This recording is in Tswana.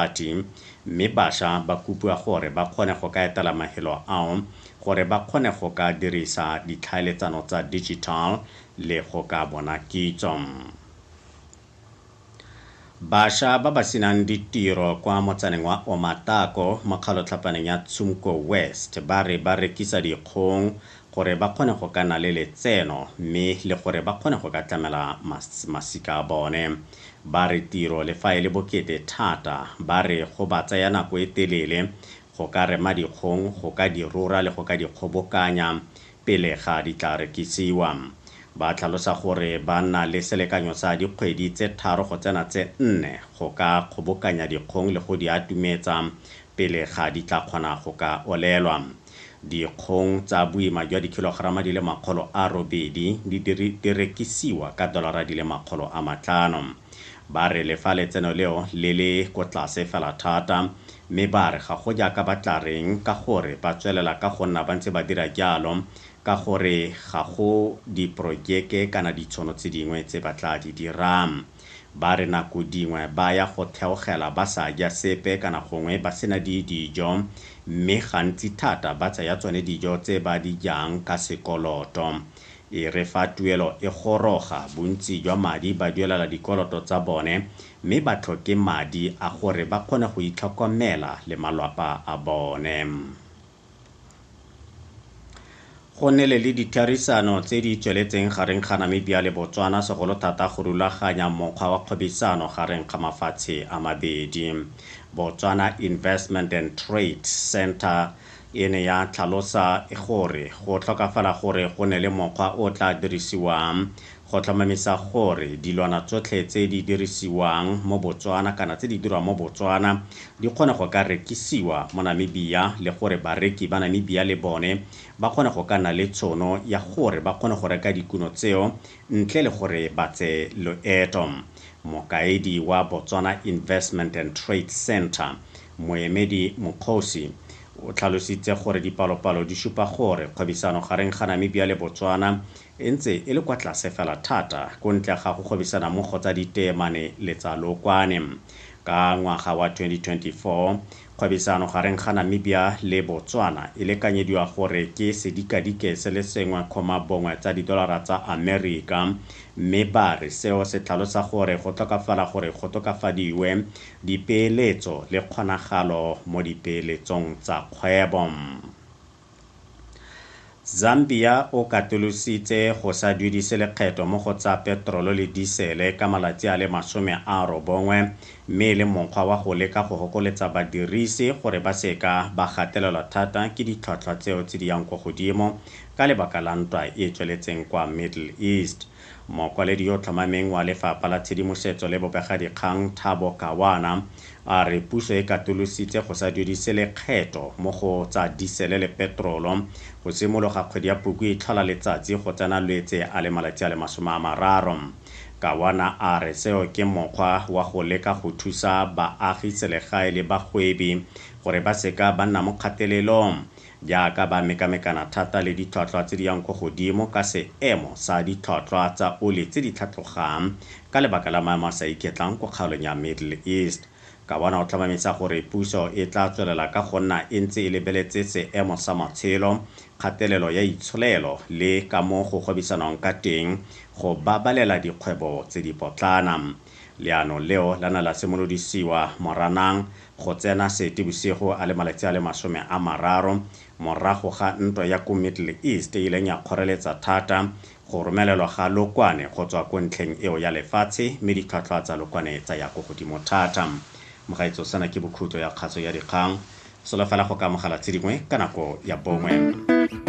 Ati, mme basha ba kopiwa gore ba kgone go ka etela mafelo ao gore ba kgone go ka dirisa ditlhaeletsano tsa digital le go ka bona kitso. Basha ba ba senang ditiro kwa motsaneng wa Omatako mo kgalotlhapaneng ya Tshumko West ba re ba rekisa dikgong gore ba kgone go ka na le letseno mme le gore ba kgone go ka tlamela masika a bone. Ba re tiro le fa e le bokete thata, ba re go ba tsaya nako e telele go ka rema dikgong, go ka di rora le go ka di kgobokanya pele ga di tla rekisiwa. Ba tlhalosa gore ba na le selekanyo sa dikgwedi tse tharo go tsena tse nne go ka kgobokanya dikgong le go di atumetsa pele ga di tla kgona go ka olelwa. Dikgong tsa boima jwa dikhilogerama di le makgolo a robedi di di rekisiwa ka dolara di le makgolo a matlhano. Ba re le fa letseno leo le le ko tlase fela thata mme ba re ga go jaaka ba tla reng ka gore ba tswelela ka go nna ba ntse ba dira jalo ka gore ga go diporojeke kana ditshono tse dingwe tse ba tla di dirang. Ba re nako dingwe ba ya go theogela ba sa ja sepe kana gongwe ba sena di dijo mme gantsi thata ba tsaya tsone dijo tse ba di jang ka sekoloto. E re fa tuelo e goroga, bontsi jwa madi ba duelela dikoloto tsa bone mme ba tlhoke madi a gore ba kgone go itlhokomela le malwapa a bone. Go nnile le ditherisano tse di tsweletseng gareng ga Namibia le Botswana segolo thata go rulaganya mokgwa wa kgwebisano gareng ga mafatshe a mabedi. Botswana Investment and Trade Centre e ne ya tlhalosa gore go tlhokafala gore go ne le mokgwa o tla dirisiwang go tlhomamisa gore dilwana tsotlhe tse di dirisiwang mo Botswana kana tse di dirwang mo Botswana di kgone go ka rekisiwa mo Namibia le gore bareki ba Namibia le bone ba kgone go ka nna le tshono ya gore ba kgone go reka dikuno tseo ntle le gore ba tse loeto. Mokaedi wa Botswana Investment and Trade Centre, Moemedi Mokgosi, o tlhalositse gore dipalopalo di supa gore kgwebisano gareng ga Namibia le Botswana e ntse e le kwa tlase fela thata ko ntle ga go gwebisanammogo tsa diteemane le tsa lookwane. Ka ngwaga wa 2024, kgwebisano gareng ga Namibia le Botswana e lekanyediwa gore ke sedikadike se le sengwe kgoma bongwe tsa didolara tsa Amerika mme ba re seo se tlhalosa gore go tlhokafala gore go tokafadiwe dipeeletso le kgonagalo mo dipeeletsong tsa kgwebo. Zambia o katolositse go sa duedise lekgetho mo go tsa petrolo le disele ka malatsi a le masome a robongwe mme e le mokgwa wa go leka go hokoletsa badirisi gore ba seka ba gatelelwa thata ke ditlhwatlhwa tseo tse di yang ko godimo ka lebaka la ntwa e e tsweletseng kwa Middle East. Mokwaledi yo o tlhomameng wa Lefapha la Tshedimosetso le Bobegadikgang, Thabo Kawana, a re puso e katolositse go sa duedise lekgetho mo go tsa disele le petrolo go simologa kgwedi ya Puku e tlhola letsatsi go tsena Lwetse a le malatsi a le masome a mararo. Kawana a re seo ke mokgwa wa go leka go thusa baagi selegae le bagwebi gore ba seka ba nna mo kgatelelong. Jaaka ba mekamekana thata le ditlhwatlhwa tse di yang kwa godimo ka seemo sa ditlhwatlhwa tsa oli tse di tlhatlogang ka lebaka la maemo a sa iketlang kwa kgaolong ya Middle East, Kawana o tlhomamisa gore puso e tla tswelela ka go nna e ntse e lebeletse seemo sa matshelo, kgatelelo ya itsholelo le ka mo go gwebisanwang ka teng go babalela dikgwebo tse dipotlana. Leano leo la na la simolodisiwa Moranang go tsena Seetebosigo a le malatsi a le masome a mararo morago ga ntwa ya ko Middle East e ileng ya kgoreletsa thata go romelelwa ga lokwane go tswa ko ntlheng eo ya lefatshe mme ditlhwatlhwa tsa lokwane tsa ya ko godimo thata. Mogaetso sena ke bokhutlo ya kgatso ya dikgang. Solofela go ka amogela tse dingwe ka nako ya bongwe.